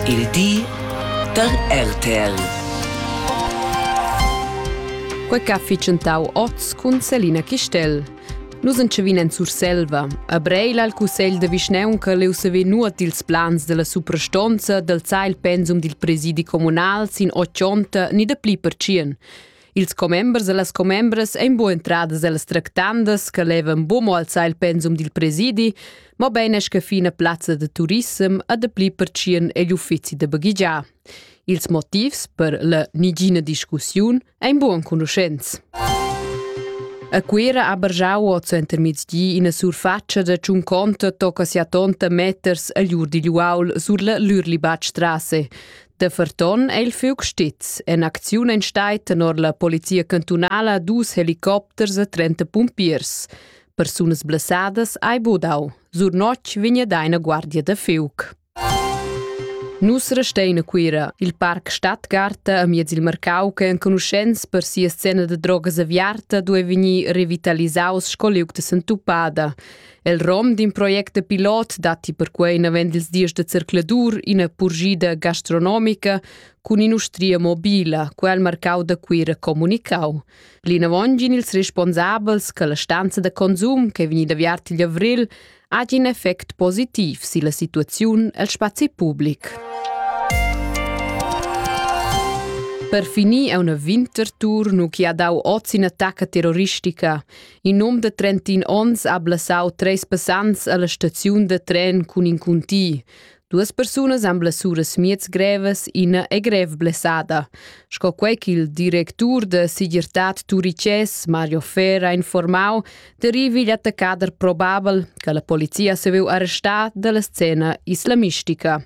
Il di da RTL. Quei che ha ficentau oz cun Selina Chistel. Nus entschevin en Surselva. A Breil al cussegl de vischneunca leu sever nuot dils plans della suprastonza del zai il pensum dil presidi communal sin ochonta ni de pli per tschien. Ils commembers e las commembras ein buc entradas ellas tractandas che levan buc mo alzar il pensum dil presidi, mobein esca fina plazza de turissem e dapli pertschien egl uffizi da baghegiar. Ils motivs per la nigina discussiun ein buc enconuschents. A Cuira ha bargiau oz entermiezdi ina surfatscha da tschun conta tocca sia tonta meters agl ur digl uaul sur la Lürlibatstrasse. Da ferton è il fiug stiz. En acziun en stai tenor la polizia cantunala dus helicopters e 30 pumpiers. Persunas blessadas ai budau. Sur notg vigna daina guardia da fiug. Nus restein a Cuira, il parc Stadtgarta a miez il Marcau che enconuschents per sia scena da drogas aviarta due vegnir revitalisaus sco liug de Santupada. El rom d'in project pilot datti perquai navend ils dies da zercladur ina purgida gastronomica cun in'ustria mobila, quel marcau da Cuira comunicau. Plinavon gin ils responsabels che la stanza da consum che vegnida viart igl avril ha in effect positiv silla situaziun el spazi public. Per finir è una Wintertour nu chi ha dau oz in attacca terroristica. In um de 31 onns ha blassau treis passants alla staziun de tren cun in cuntì. Duas persunas han blessuras miez grevas, ina è grev blessada, sco quei ch'il directur de Sigirtad Turicès, Mario Fer, ha informau, derivi igl attaccader probabel che la polizia se veu arrestar dalla scena islamistica.